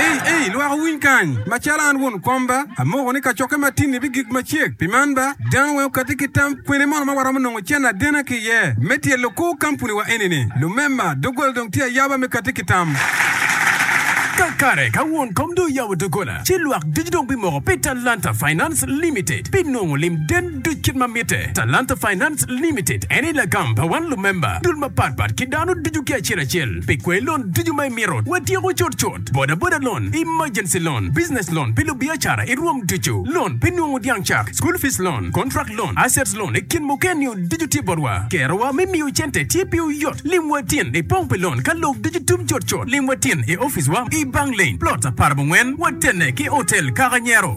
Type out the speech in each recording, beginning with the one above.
Ei, ei, lwak owiny kany! Macalo an won komba, amoko ni kacokke matinni bigik macek. Pi man ba, dano weng okatti ki tam, kwene mono ma waromo nongo cen adena ki iye me tyelo kor kampuniwa eni-ni? Lumema, doggola dong tye ayaba me katti ki tam. Kakare, ka won kom dong oyabo doggola, ci lwak ducu dong bimoko pi Talanta Finance Limited, binongo lim den. Duc kit ma mitte. Talanta Finance Limited en aye lagam pa wan lumemba dul mapat pat ki dano ducu ki acel acel pi kwai lon ducu ma imito. Watyeko cut cut, boda boda loan, emergency loan, business loan pi lubiacara i rwom ducu, loan pi nungu dyang cak, school fees loan, contract loan, assets loan i kin muken nio ducu tye botwa. Kerowa me miyo cente tye piwu yot. Lim wa tin i pong pi loan ka lok ducu tum cut cut. Lim wa tin i office wa i Bang Lane, Plots apar bongwen, watenne ki Hotel Kaka Nyero.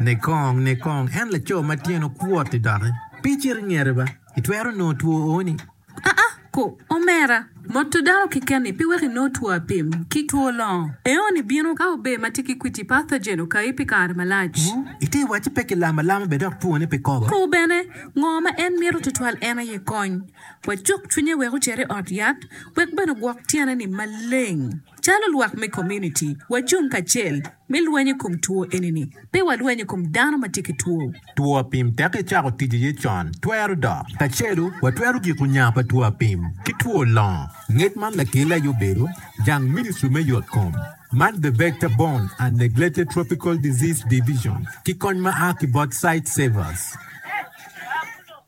Nikong nikong en laco ma tyene okwot-ti doki pe icit ingete ba, itwero nongo two oni? Aa ko, omera. Moto dano keken-ni pe weko inong two apim ki two longo. Eoni bino ka ober ma tye ki kwiti, pathogen, okayi pi kare malac. Wu, ite wacci pe kilamo alama bene dok twone pe kobo. Ko bene, ngo ma en mito tutwal en aye kony. Wacuk cwinye wek ocer i ot yat, wek bene ogwok tyene-ni maleng. Calo lwak me komuniti, wacung kacel me lweny i kom two eni-ni. Pe walweny i kom dano ma tye ki two. Two apim tek icako tic iye con twero dok. Kacelu, watwero giko nya pa two apim ki two longo. Ngec man lakelle aye obedo jang ministri me yot kom man The Vector Borne and Neglected Tropical Disease Division ki kony ma a ki bot Sightsavers.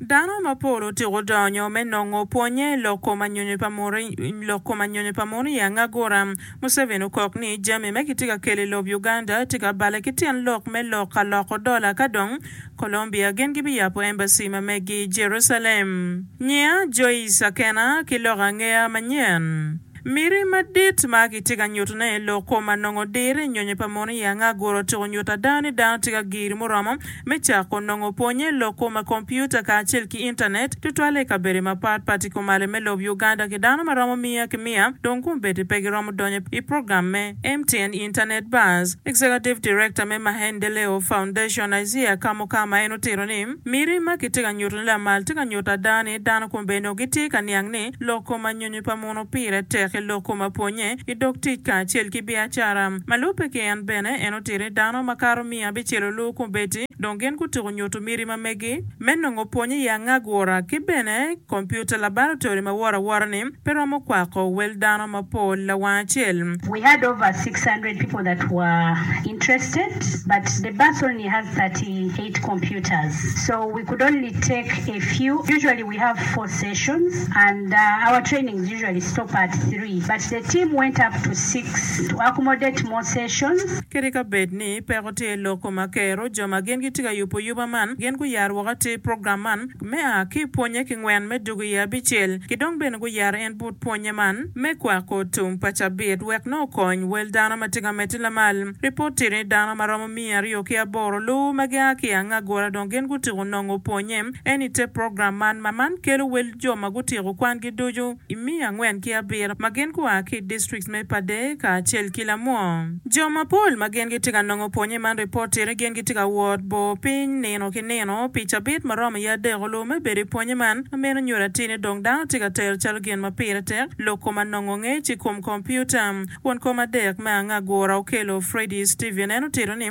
Dano mapol otyeko donyo me nongo pwonye lok kom anyonyo pa munu lok kom anyonyo pa munu i angagura. Museveni okok ni jami ma kitye ka kelo i lob Uganda tye ka bale ki tyen lok me lok ka loko dola ka dong Colombia gin gibiyabo embassy ma megi i Jerucalem. Nyiya Joyce Akena ki lok angeya manyen. Miti madit ma kitye ka nyutone i lok kwo ma nongo dire nyonyo pa mono i anga gure otyeko nyuto ada ni dano tye ka giri muromo me cako nongo pwonye i lok kwo ma kompiuta kacel ki Intanet, tutwalle i kabedo mapat pat i komale me lob Uganda ki dano ma romo miya ki miya dong gumbeddi pe giromo donyo i program me MTN Internet Buzz. Executive Director me Mahendeleo Foundation, Isaiah Kamukama en otito ni, Miti ma kitye ka nyutone lamal tye ka nyuto ada ni dano kombeddi onongo gitye ka niang ni lok kwo ma nyonyo Kare pa muno pire tek i lok kom apwonnye, i dog tic kacel ki biacara. Ma lubbe ki en bene, en otito ni dano makato miya bicelo luu kubeti dong gin gutuko nyutu miti ma megi me nongo pwony i angagura ki bene kompiuta labaratory ma woro awora ni pe romo kwako wel dano mapol lawang acel. We had over six hundred people that were interested but the bus only has thirty eight computers so we could only take a few usually. We have four sessions and our trainings usually stop at three but the team went up to six to accommodate more sessions. Kadi ka bed ni peko tye i lok koma kero, jo ma gin gitye ka yubo yuba man gin guyaro woko atir i program man me a ki pwonye ki ngwen me dwogo iye abicel. Ki dong bene guyaro en but pwonye man me kwako tum pa cabit wek nongo okony wel dano ma tye ka medde lamal. Ripot tye ni dano ma romo miya aryo ki aboro luwu ma gia ki i Angagura dong gin gutuko nongo pwonye. En i te program man ma man kelo wel jo ma gutyeko kwangi ducu i miya angwen ki abiro ma gin gua ki i distrikts me Pader kacel ki Lamwong. Jo mapol ma gin gitye ka nongo pwonye man ripoti ni gin gitye ka wot bor piny nino ki nino pi cabit ma romo iye adek olur me bedo i pwonye man ma meno nyuto atir ni dong dano tye ka tero calo gin ma pire tek lok kom anongo ngec i kom kompiuta. Won kom adek me angagura okelo Freddie Stephen en otito ni,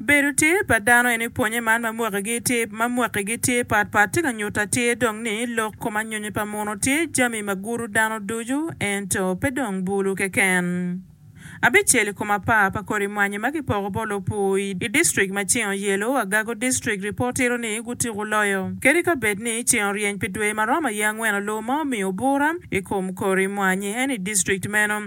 Bedo tye pa dano eni pwonye man ma mwakigi tye ma mwakigi tye pat pat tye ka nyuto atir dong ni lok kom anyonyo pa muno tye jami ma gudo dano ducu ento pe dong bulu keken. Abicel i kom apar pa kodi mwanyi ma kipoko bot lopur i i district ma ceng oyelo, Agago District, ripot tito ni gutiko loyo kadi ka bed ni ceng oryeny pi dwe ma romo aye angwen oloo ma omiyo bura i kom kodi mwanyi eni i district meno.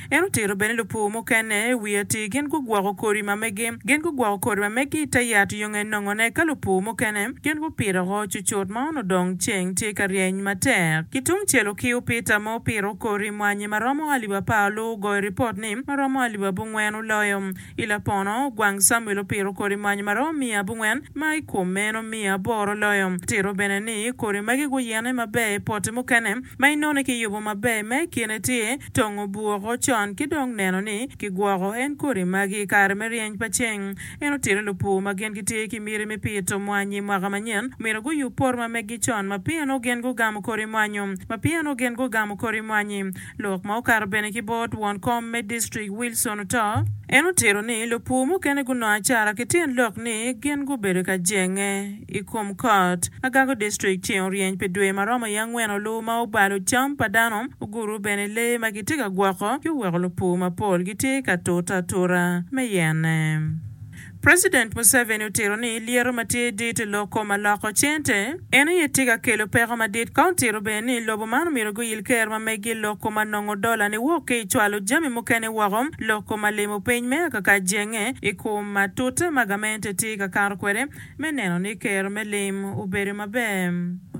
En otito bene lupur mukene wi atir gin gugwoko kodi ma megi. Gin gugwoko kodi ma megi i te yat yo nge nongone ka lupur mukene gin gupito oko cucut ma onongo dong ceng tye ka ryeny matek. Ki tung cel okiu Peter ma opito kodi mwanyi ma romo alip apar lu ogoyo ripot ni ma romo alip abungwen oloyo. I lapono, ogwang Samuel opito kodi mwanyi ma romo miya abungwen ma i kom meno miya aboro oloyo. Tito bene ni kodi megi guyene maber i pote mukene ma inone kiyubo maber ma i kine tye. tongo bwoko con ki dong neno ni kigwoko en kodi magi i kare me ryeny pa ceng. En otito ni lupur ma gin gitye ki miti me pito mwanyi i mwaka manyen myero guyub poto ma meggi con ma pienno gin gugamo kodi mwanyu ma pienno gin gugamo kodi mwanyi. Lok ma okato bene ki bot won kom me distrik Wilson oto. En otito ni lupur mukene gunongo acara ki tyen lok ni gin gubedo ka jenge. i kom kot. Agako District ceng oryeny pi dwe ma romo i angwen oluwo ma obalo cam pa dano, oguro bene lee ma gitye ka gwoko ci oweko lupur mapol gitye ka tute atura me yene. President Museveni otito ni lyeto ma tye dit i lok koma loko cente en aye tye ka kelo peko madit ka otito bene ni lobo man omyero guyil ker ma megi i lok koma nongo dola niwok ki i cwalo jami mukene woko lok koma limo piny me akaka jenge i kom ma tute ma gamente tye ka kato kwede me neno ni kero me lim obedo maber.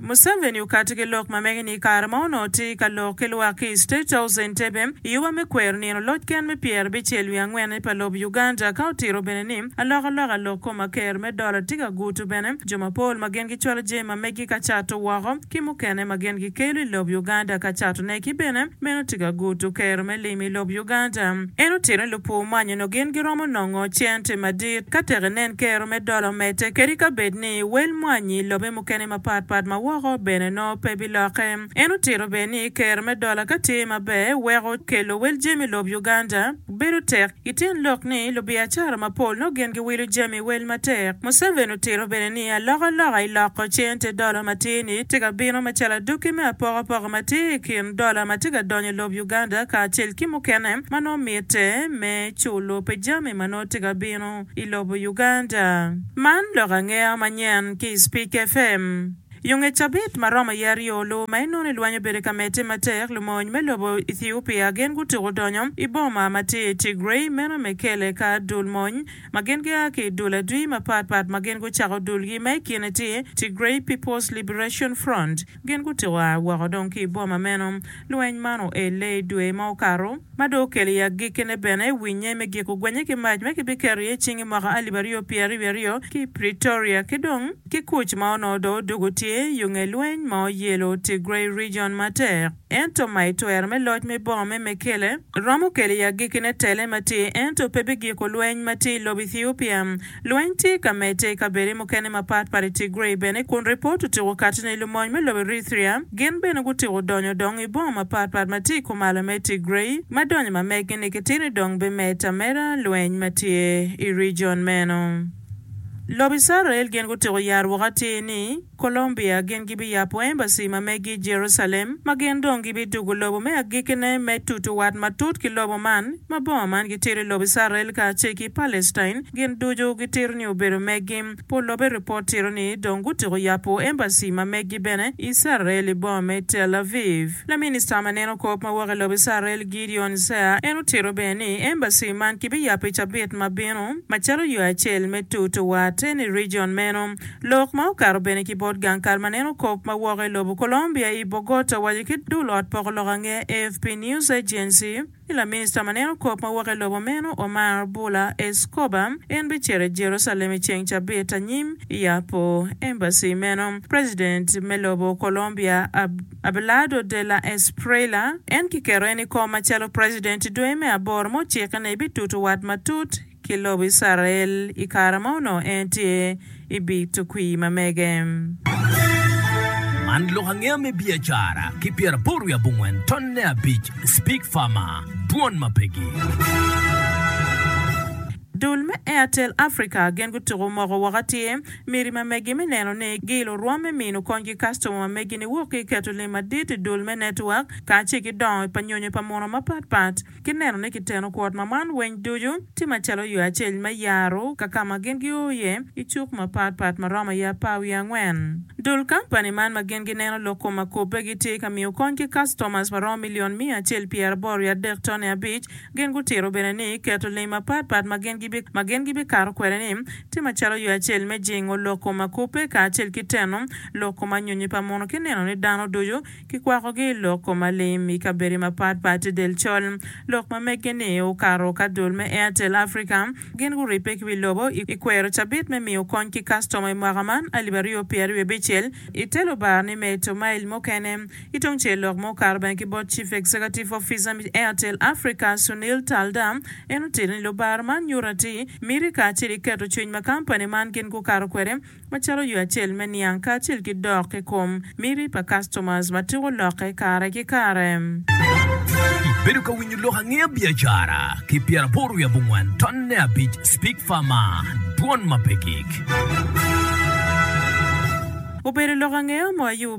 Museveni okato ki lok ma mege ni i kare ma onongo tye ka lok ki lwak ki i State House Entebbe i yoba me kwero nino loc ken me pyerabicel wiye angwen pa lobo Uganda ka otito bene ni alokaloka lok kom ma kero me dola tye ka guto bene jo mapol ma gin gicwalo jami ma meggi ka cato woko ki mukene ma gin gikelo i lob Uganda ka catone ki bene meno tye ka gudo kero me lim i lob Uganda. En otito ni lupur man nyo gin giromo nongo cente madit ka tek enen kero me dola omedde kadi ka bed ni wel mwanyi i lobe mukene mapat pat ma woko bene nongo pe bilokke. En otito bene ni kero me dola ka tye maber weko kelo wel jami i lob Uganda bedo tek. I ten lok ni lubiacara mapol nongo gin giwilo jami wel matek, Museveni otito bene ni alokaloka i loko cente dola matir-ni tye ka bino macalo adwogi me apokapoko matir i kin dola ma tye ka donyo i lob Uganda kacel ki mukene ma nongo mitte me culo pi jami ma nongo tye ka bino i lobo Uganda. Man lok angeya manyen ki i Speak FM. I onge cabit ma romo iye aryo luwu ma inongo ni lwany obedo ka medde matek, lumony me lobo Ethiopia gin gutuko donyo i boma ma tye i Tigray, meno Mekele, ka dul mony ma gin gia ki i dul adwi mapat pat ma gin gucako dulgi ma i kine tye Tigray People's Liberation Front. Gin gutuko a woko dong ki i boma meno. Lweny man oelle i dwe ma okato, ma dong okelo i agikkine bene winye me giko gwenye ki mac ma kibiketo iye cing i mwaka alip aryo pyeraryo wiye aryo ki i Pretoria ki dong Ki kuc ma onongo dong odwogo tye yo nge lweny ma oyelo Tigray Region matek. Ento ma i twero me loc me boma me Mekele, romo kelo i agikkine tele ma tye ento pe bigiko lweny ma tye i lobo Ethiopia. Lweny tye ka medde i kabede mukene mapat pat i Tigray bene kun ripot otyeko kati ni lumony me lobo Erythrea gin bene gutyeko donyo dong i boma mapat pat ma tye i kumalo me Tigray ma donyo ma meggi ni kitino dong bimed ameda lweny ma tye i region meno. Lobo Icrael gin gutyeko yaro woko atir ni Colombia gin gibiyabo embassy ma megi i Jerucalem ma gin dong gibidugo lobo me agikkine me tutu wat matut ki lobo man. Ma bongo man gitito i lobo Icrael kacel ki Palestine gin ducu gitito ni obedo megi. Pol lobe ripot tito ni dong gutyeko yabo embassy ma megi bene i Icrael i boma me Tel Aviv. Laminista ma neno kop ma wok i lobo Icrael, Gideon Zea, en otito bene ni embassy man kibiyapo i cabit ma bino macalo yo acel me tutu wate ni region meno. Lok ma okato bene ki bot gang kal ma neno kop ma woko i lobo Colombia i Bogota owaco ki dul ot poko lok ange AFP News Agency ni laminista ma neno kop ma woko i lobo meno Omar Bula Escobar en bicito i Jerusalem i ceng cabit anyim yapo embassy meno. President me lobo Colombia Abd. Abelardo de la Espriella, en kiketo en i kom macalo president i dwe me aboro ma ocikke ni bitutu wat matut ki lobo Icrael i kare ma onongo en tye i bii tukwir ma mege. Man lok angeya me biacara ki pyeraboro wiye abongwen tonne abic Speak Farmer, Dwon ma pe gi. Dul me Airtel Africa gin gutuko moko woko atir. Miti ma megi me neno ni giilo orwom me mino kony ki kastoma ma megi ni wok ki i keto lim madit i dul me netwak kacel ki dongo pa nyonyo pa munu mapat pat ki neno ni kiteno kwot ma man weng ducu tye macalo yo acel me yaro ka ka ma gin gio iye i cuk mapat pat ma romo iye apar wiye angwen dul kampani man ma gin gineno lok kom ma kobbe gitye ka miyo kony ki kastomas ma romo milion miya acel pyeraboro wiye adek tone abic Gin gutito bene ni keto lim mapatpat ma gin gibikato kwede-ni tye macalo yo acel me jingo lok kom akobbe kacel ki teno lok kom anyonyi pa muno ki neno ni dano ducu kikwakogi i lok kom alim. I kabedi mapatpat i del col, lok ma meggi-ni okato ka dul me Airtel Africa. Gin guribbe ki wi lobo i kwero cabit me miyo kony ki kastoma i mwaka man alip aryo pyeraryo abicel i te lubara ni meto mail mukene Ki tung cel lok ma okato bene ki bot Chief Executive Officer me Airtel Africa, Sunil Taldar, en otito ni lubar man nyuto ati miti kacel ki keto cwiny ma kampani man gin gukato kwede macalo yo acel me niang kacel ki dok i kom miti pa customers ma tiko lokke kare ki kare. Ibedo ka winyo lok angeya biacara ki pyeraboro wiye abongwen tonne abic Speak Pharma, dwon ma pe gik. Obedo lok angeya mo ayub.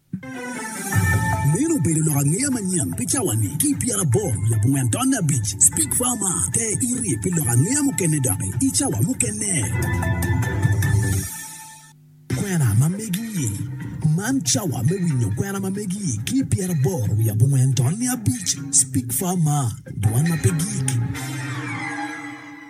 Meno obedo lok angeya manyen pi cawani ki i pyerabong labongo entonne abic. Speak Farmer, Te iri pi lok angeya mukene doki i cawa mukene. Kwena ma megi-i, Man cawa me winyo kwena ma megi-i ki i pyeraboro wiye abongwen tonne abic. Speak Farmer, Dwan ma pe gik.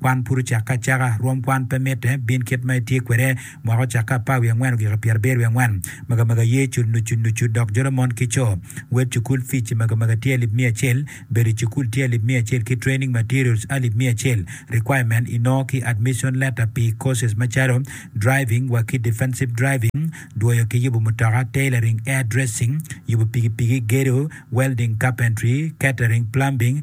Kwan pud ocakke acaka. Rwom kwan pe mitte. Bin kit ma itye kwede. Mwaka ocakke apar wiye angwen ogiko pyera abiro wiye angwen. Magamega ye cul nucu nucu dok jolo mon ki co. Wed cukul fic i magamega tye alip miya acel. Bedo i cukul tye alip miya acel ki training materials alip miya acel. Requirement inongo ki admission letter pi courses macalo, Driving wa ki Defensive Driving, Dwoyo ki yubo mutoka, Tailoring, Air Dressing, Yubo pigipigi, Gedo, Welding, Carpentry, Catering, Plumbing,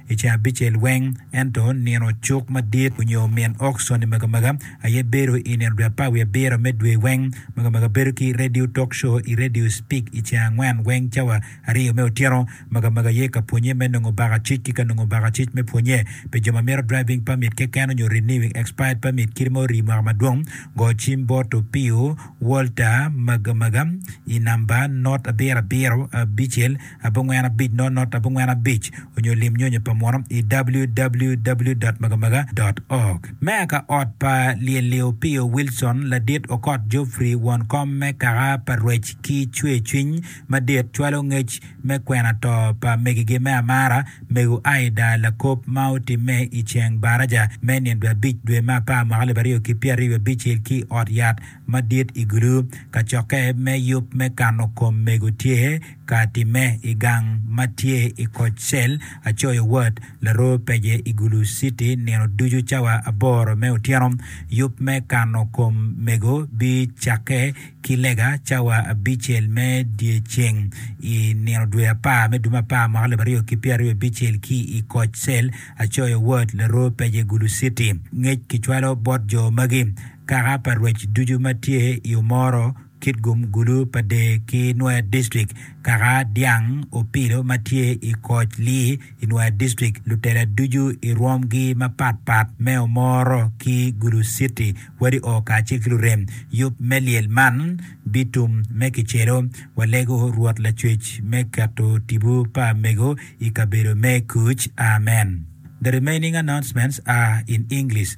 I ceng abicel weng, ento nino cuk madit onyo min ok Sony Magamaga aye bedo i nino dwe apar wiye abiro me dwe weng. Magamaga bedo ki radio talk show i radio Speak i ceng angwen weng cawa aryo me otyeno. Magamaga aye ka pwonye me nongo baka cic ki ka nongo baka cic me pwonye pi jo ma mito driving permit keken onyo renewing expired permit kit ma orii mwaka madwong. Go cim bot Opio Walter Magamaga i namba not abiro abiro abicel. abongwen abic not not abongwen abic onyo lim nyonyo pa muno i www dot magamaga dot org. Meya ka ot pa Lyelio Pio Wilson, Ladit Okot Geoffrey, won kom me kaka pa Rwec ki cwer cwiny madit cwalo ngec me kwena to pa megigi me amara, Mego Aida Lakop ma otimme i ceng baraja me nino dwe abic dwe me apar mwaka alip aryo ki pyeraryo wiye abicel ki ot yat madit i gulu. Kacokke me yub me kano kom mego tye ka timme i gang ma tye i koc cel Acoyo Ward, Laroo Peje i Gulu City nino ducu cawa aboro me otyeno. Yub me kano kom mego bicakke ki lega cawa abicel me dyeceng i nino dwe apar me dwe me apar mwaka alip aryo ki pyeraryo abicel ki i koc cel Acoyo Ward, Laroo Peje, Gulu City. Ngec kicwalo bot jo magi Kaka pa rwec ducu ma tye i Omoro, Kitgum, Gulu, Pader ki Nwoya District, kaka dyang opilo ma tye i koc Lii i Nwoya District, lutela ducu i rwomgi mapat pat me Omoro ki Gulu City, wadi oo kacel ki lurem yub me lyel man bitum me kicelo walego Rwot Lacwec me keto tipo pa mego i kabedo me kuc. Amen. The remaining announcements are in English.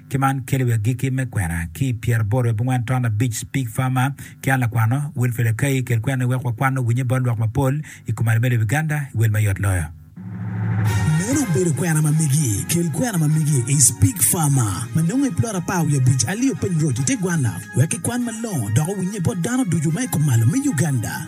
Ki man kelo i agikki me kwena ki i pyera aboro i abongwen taun abic, Speak Farmer ki an lakwano, Wilfred Akai, kel kwenani wek wakwan owinye bot lwak mapol i kom arime lobo Uganda i wel ma yot loyo. Meno obedo kwena ma megi, kel kwena ma megi i Speak Farmer ma nongo i plot apar wiye abic, Alio Piny Road i te gwanna wek kikwan malongo dok owinye bot dano ducu ma i kom malo me Uganda.